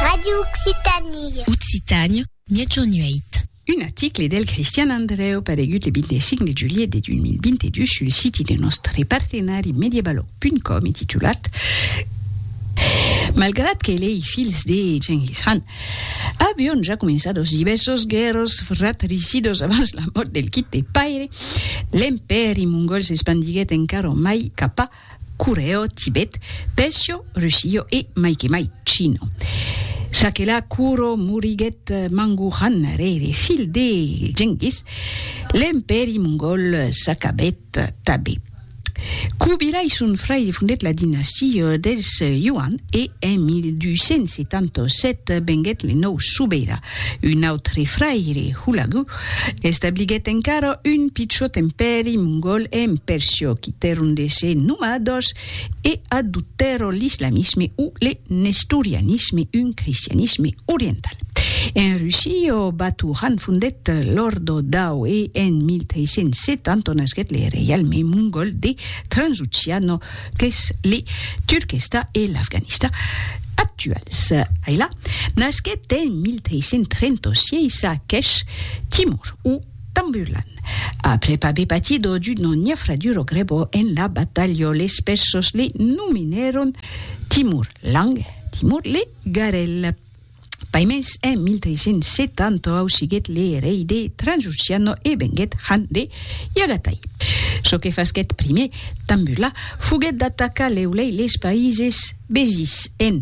Radio Occitanie. Occitània, Miègjorn 8. Un article del Cristian Andrèu paregut le 25 de julhet de 2022 sul siti de nòstre partenari Mediebaloc.com e titulat Malgrat que lei filhs de Genghis Khan avion ja començat los divèrsos guèrros fratricidos abans la mòrt del quite paire, l'empèri mongòl s'espandiguèt encara mai cap a Coreo, Tibet, Pecio, Rusio e, mai que mai, Chino. Sakela Kuro moriguèt Mangu Khan, rere filh de Genghis, l'empèri mongòl s'acabèt tabé. Kubilai, son fraire, fondèt la dinastia dels Yuan e en 1277 venguèt le nòu sobeira. Un autre fraire, Hulagu, Establiguèt encara un pichòt empèri mongòl en Perciò, qui tèrun de se nomar dos e adoptèron l'islamisme o le nestorianisme, un cristianisme oriental. En Russia, Batu Khan fondèt l'Òrdo Dao e en 1370 nasquèt le reialme mongòl de Transoceano qu'es le Turquestan e l'Afganistan actuals. Ailà, Nasquèt en 1336 a Kesh, Timor, o Tamburlan, après aver patido d'una niafraduro grebo en la batalha les Persos le nominèron Timur Lang, Timor le Garel. Paimens en 1370 ausiguèt le rei de Transoxiano e venguèt Khan de Yagatai. Çò que fasquèt primièr Tambula foguèt d'atacar lèu-lèi les païses Bezis en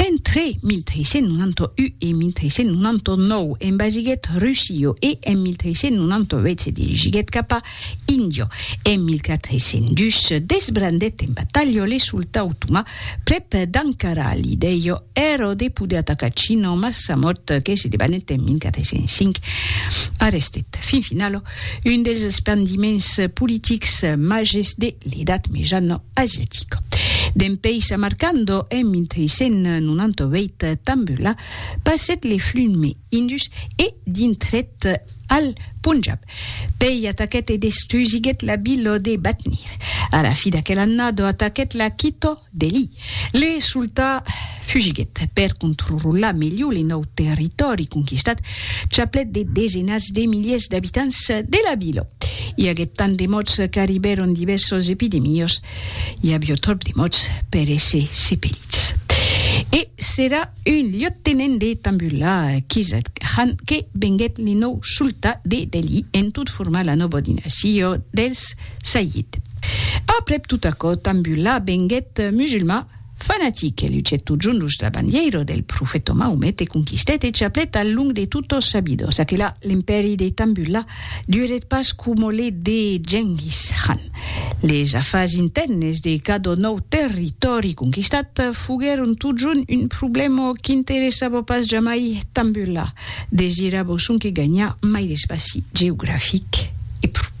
Entre 1391 e 1399 envasiguèt Rusio e en 1398 se dirigiguèt cap a Indio. En 1402 se desbrandèt en batalha le sultà otomà prèp d'Ankara. L'idèia èra de poder atacar China, mas sa mòrt, que se debanèt en 1405, arrestèt fin finala Un dels espandiments politics màges de l'Edat Mejana asiatica. Dempeis Samarcando en 1398 tambula passèt le flume Indus e dintrèt al Punjab. Pei ataquèt e destrusiguèt la vila de Batnir. A la fi d'aquel annada ataquèt la Quito, Delhi. Le sultà fugiguèt. Per contrrolar melhor le nòu territòri conquistat, chaplèt de desenats de miliers d'abitants de la vila. I aguèt tant de mòts qu'arribèron divèrsos epidemiós. I avió tròp de mòts per èsser sepelits. E s'èra un liottenent de Tambullah Qizad Khan que venguèt le nòu sultà de Delhi en tot formar la nòva dinasia dels. Sayyid. Aprèp tot aquò, Tambullah venguèt musulmà fanatic e lucèt totjorn los la bandièira del profèta Maomet e conquistèt e chaplèt al long de tot sos sabidors. Aquela, l'impèri de Tambullah durèt pas coma le de Genghis Khan. Les afars intèrnes de cada nòu territòri conquistat foguèron totjorn un problèma qu'interessava pas jamai Tambullah, desirava sonque ganhar mai d'espaci geografic e pro.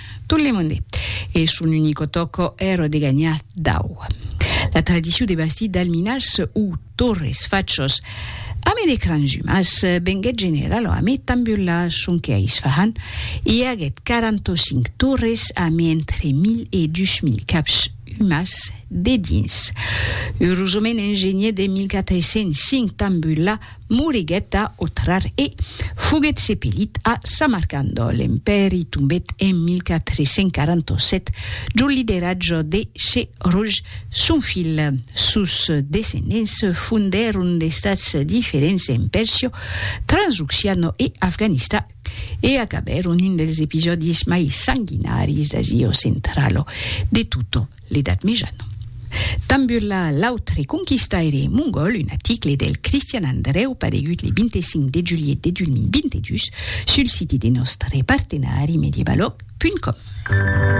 Tot le monde. E son unico tòco èra de ganhar dau. La tradicion de bastir d'alminars o torres, fachos, ame de cranjumas, venguèt generala ame Tambula, sonque a Isfahan i aguèt 45 torres ame entre 1000 e 2000 caps umas dedins. Urosament en genièt de 1405 Tambula, Moriguèt a Otrar e foguèt sepelit a Samarcand. L'empèri tombèt en 1447 jo lideratge de Shehruj, son filh. Sos descendents fondèron d'estats diferents en Pèrsia, Transoxiana e Afganista e acabèron un dels episòdis mai sanguinaris d'Asia Centrala de tota l'Edat Mejana. Tambula, l'autre conquistaire mongòl, un aticle del Cristian Andrèu paregut le 25 de julhet de 2022 sul siti de nòstre partenari medievalog punt com.